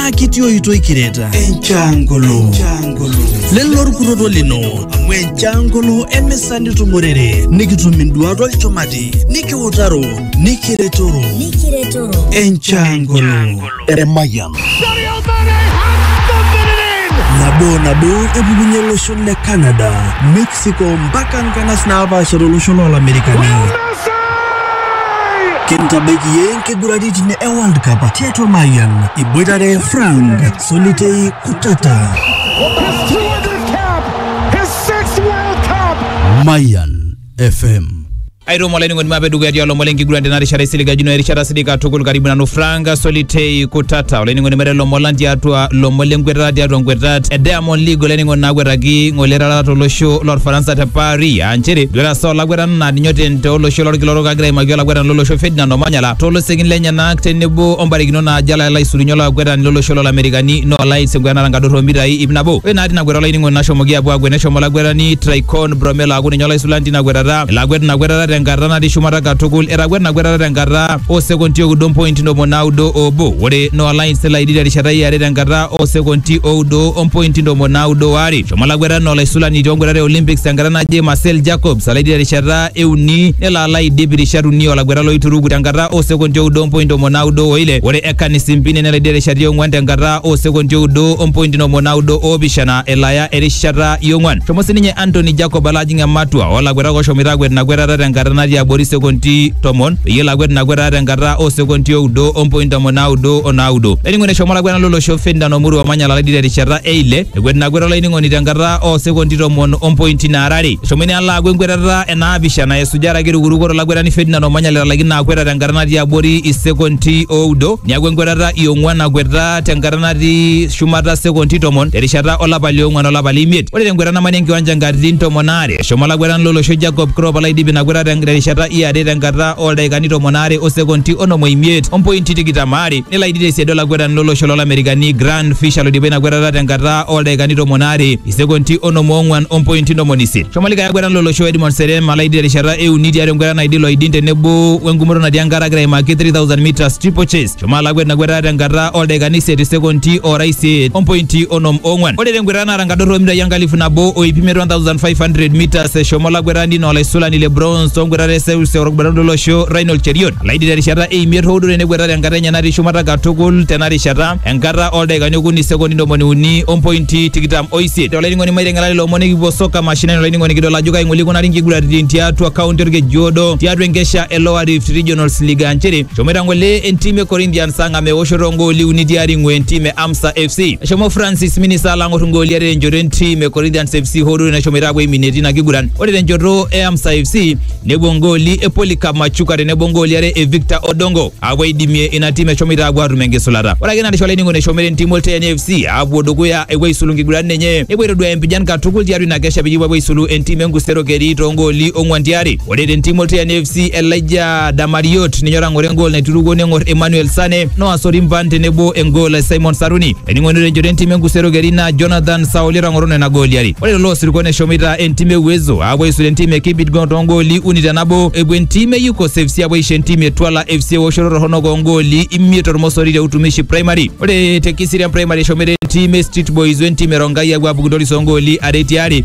naa kitii oitoi kireta enchangolo lelo orkutoto lino amu enchangolo emisa nitumorere nikitum induat olchumati nikiutaro nikiretoro enchangolo Eremayian. nabo nabo epukunye olosho le Canada mexico mpaka nkanas naapaasha tolosho loolamerikani kintabaiki yie nkiguraritin e world cup tiatua mayian iboitare frank solitei kutata Mayan FM. aitomo olainining'oni mape dukuya tialo lomon lenkiguran tena rishata isiligajino erishata sidai katukul karibu nanu frank solitei kutata olainining'oni mape lomon lang tiatua lomon lenkwetata tiatua nkwetat e diamond league olainining'oni naakwetaki ng'ole erarata tolosho lorfaransa te paris aa nchere duata saa olakwetani naa ninye oten tolosho lorkila orok agira aimaki olakwetani lolosho ferdinand omanyala tolosekin lenyenak tenebo ombarikinot naajo ala elo aisulunye olakwetani lolosho lolamerikani noolais enkwetata enkadorro omitai ip nabo ore naa tina kwetata olainining'oni nashomoki apuo akwet neshomo olakwetani traicon Ibrom elaaku ninye olaisulani tina kwetata. Elakwet ina kwetata tenkata natii shumata katukul. Etakwet ina kwetata tenkata oo sekonti oudo mpointi ntomoni naudo oobo. Ore Noah Lyons nelo aidip terishata e are tenkata oo sekonti oudo o mpointi ntomoni naudo o are. Eshomo olakwetani naa olaisulani too nkwetata e Olympics tenkata naje Marcel Jacobs alo aidip terishata e uni nelo alo aidip irishat uni o lakwetani loituruku tenkata oo sekonti oudo o mpointi ntomoni naudo o ile. Ore Ekani Simpine nelo aidip terishata e ong'uan tenkata oo sekonti oudo o mpointi ntomoni naudo o opishana elo aya erishata yong'wan. Shomo sininye Anthony Jacob alo ajing ematua oolakuetak oshomoita akwet ina kwetata tenkata natii abori sekonti tomon peyie elo akwet ina kwetata tenkata oo sekonti oudo ompointi tomon naudo o naudo. Laining'oni eshomo olakwetani lolosho Ferdinand Omuru Omanya Lalidi terishata e ile ekwet ina kwetata olainining'oni tenkata oo sekonti tomon ompointi naara are. Eshomo ina alo aaku enkwetata e naapishana esuja araki erukuruko to lakwetani Ferdinand Omanya letalaikine ina kwetata tenkata natii abori isekonti oudo neaku enkwetata iong'wan nakweta tenkata natii shumata sekondi tomon terishata olapa liong'uan olapa leimiet. Ore tenkwetata namani enkiwanja nkatitin tomon aare eshomo olakwetani lolosho Jacob Crop olaidip ina kwetata ten- terishata iare tenkata oldaikani tomon aare o sekondi onom oimiet ompointi tikitam aare nelo aidip tesiadi olakwetani lolosho lolamerikani Grant Fisher loidipa ina kwetata tenkata oldaikani tomon aare isekondi onom oong'uan ompointi ntomoni isiet. Shomo likae akwetani lolosho Edmond Serem alaidip terishata euni tiatua enkwetata naidil oidin tenebo wengumoto natii enkare agira aimaki 3000 meters triple chase Shomo alakwa ina kwetata tenkata oldaikani isiet isekondi ora isiet ompointi onom ong'wan. Ore tenkwetata naata nkadorr omitai enkalifu nabo o iip imiet 1500 meters eshomo olakwetani naa olaisulani le bronze tonkwetat e seuse orkibarondo lolosho Raynold Cheriot alaidi terishata e imiet hoo duo tenekweta tenkata enye natii shumata katukul tena rishata enkata oldaikani okuni isekondi ntomoni uni ompointi tikitam o isiet. Ore olainining'oni maiteng'ela lelo omon ekipuo soka mashinani olainining'oni kidol ajo kai ng'ole ikunari nkiguraritin tiatua kaunti olkejuodo tiatua enkesha e Lower Rift Regionals League aa nchere Shomoita ngole entim e Corinthians ang am eoshoto ngooli uni tiari ng'we entim e Amsa FC. Eshomo Francis Minisa ala ang'or ngooli are tenchoto entim e Corinthians FC hoo duo neshomoita apuo aiminie tina kiguran. Ore tenchoto e Amsa FC nepuo ngooli e Polycarp Machuka tenebo ngooli are e Victor Odongo apuo aidimie ina tim eshomoita apuo atum enkisulata. Ore ake ina rishata olainining'oni eshomoita entim Olteeni FC apuo dukuya epuo aisulu nkiguran enye nepuo aitoduaya empijan katukul tiatua ina kesha peyie epuo apuo aisulu entim e Nkusero Keri too ngooli ong'wan tiari. Ore te ntim oltian FC Elijah Damariot ninye otang'oro engol naiturukuo neng'or Emmanuel Sane Noah Sorimban tenebo engol e Simon Saruni. Ening'ono tenchoto entim enkusero keri naa Jonathan Sauli otang'oro nena gooli are. Ore tolo osirua neshomoita entim e Uwezo aapuo aisula entim e Kibidgong toongooli uni te nabo epuo entim e Yukos FC apuo aisho entim e Twala FC eoshoto torronok oongooli imiet tormosori te Utumishi Primary. Ore te Kiserian Primary eshomoita entim e Street Boys wentim e Rongai apuo apuku toris oongooli are tiaare.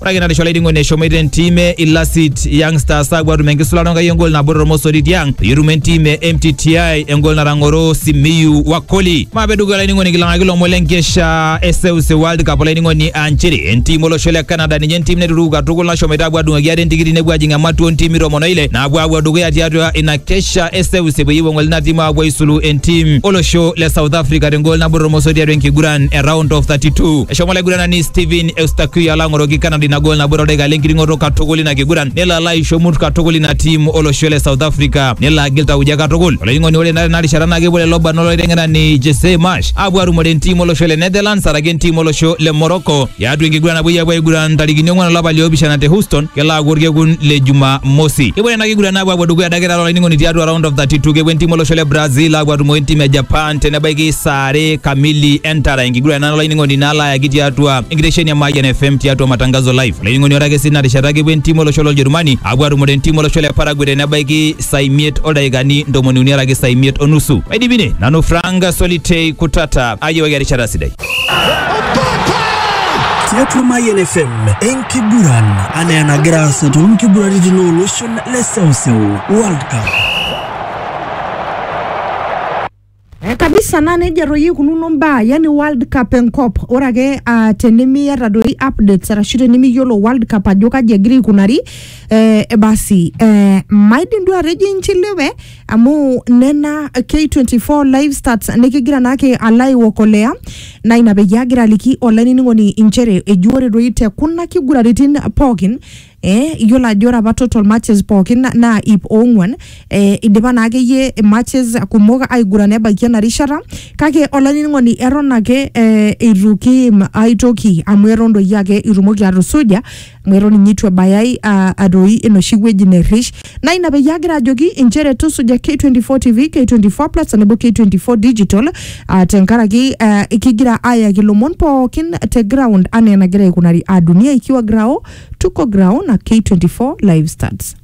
ore ake narisho olainining'oni eshomoita entim e ilasit young stars aapuo atum enkisulata onkai engol nabo tormosori tiang peyie etum entim e mtti engol natang'oro simiyu wakoli maape dukuya olainining'oni kilang'aki lomon lenkesha e seuseu world cup olainining'oni aa nchere entim olosho le canada ninye entim naituruku katukul nashomoita aapuo adung'oki ate entikiti nepuo ajing ematua ontimi tomon oile naapuo aapuo dukuya tiatua ina kesha e seuseu peyie epuo ng'ole ina tim aapuo aisulu entim olosho le south africa tengol nabo tormosori tiatua enkiguran e round of 32 eshomo olaiguranani steven Eustaquio Yalang'oroki Canada ina gol nabo todaikai lenkiring'oto katukul ina kiguran nelo alo aisho mut katukul ina tiim olosho le South Africa nelo agil tauja katukul olainining'oni ore naa tena rishata naa kepuo lelo barnot olaiteng'enani Jesse Marsh apuo atumore entiim olosho le Netherlands araki entiim olosho le Morocco tiatua enkiguran napuoi apuo aiguran ntarikini ong'wan olapa liopishana te Houston kelo aaku orkekun le Jumamosi kepuo nena kiguran apuo apuo dukuya adake taata olainining'oni tiatua round of 32 kepuo entiim olosho le Brazil apuo atumore entiim e Japan te nebaiki saa are kamili entara enkiguran nalo olainining'oni nalo ayaki tiatua enkitesheni e Mayian FM tiatua matangazo live. Olainining'oni ore ake sii ina rishata kepuo entiim olosho loljerumani apuo atumore entiim olosho le Paraguay te nebaiki saa imiet oldaikani ntomoni uni araki saa imiet onusu. Aidipine nanu Frank Solitei Kutata ayiewaki erishata sidai. tiatua Mayian FM enkiguran anaa enagira aasa toonkiguraritin ooloshon le seuseu World Cup. Eh, kabisa naa nejia toi ikununo mbaa yani world cup enkop ore ake uh, tenimiata doi updates arashu tenimiyiolo world cup ajo kaji egira aikunari eh, eh, basi eh, maidim duo atejo inchiliwe amu nena k24 live stats nikigira naake alo aiokolea naa ina peyie agira aliki olainining'oni inchere eji ore doi te kuna kiguraritin pookin Eh, iyiolo ajo ore apa total matches pookin na- naa ip ong'uan eh, idipa naa akeyie matches kumok aigurana ebaiki ena rishata kake olainining'oni eton ake eh, eitu kiim ai toki amu eton doi ake itumoki atusuja amu eton ninye eitu ebayai ah, atoi enoshi wueji nerrish Naa ina peyie agira ajoki inchere tusuja K24 TV, K24 Plus tenebo K24 Digital ah, tenkaraki ah, kigira ayaki ilomon pookin te ground anaa enagira aikunari aa dunia ikiwa grao tuko grao na K24 live stats.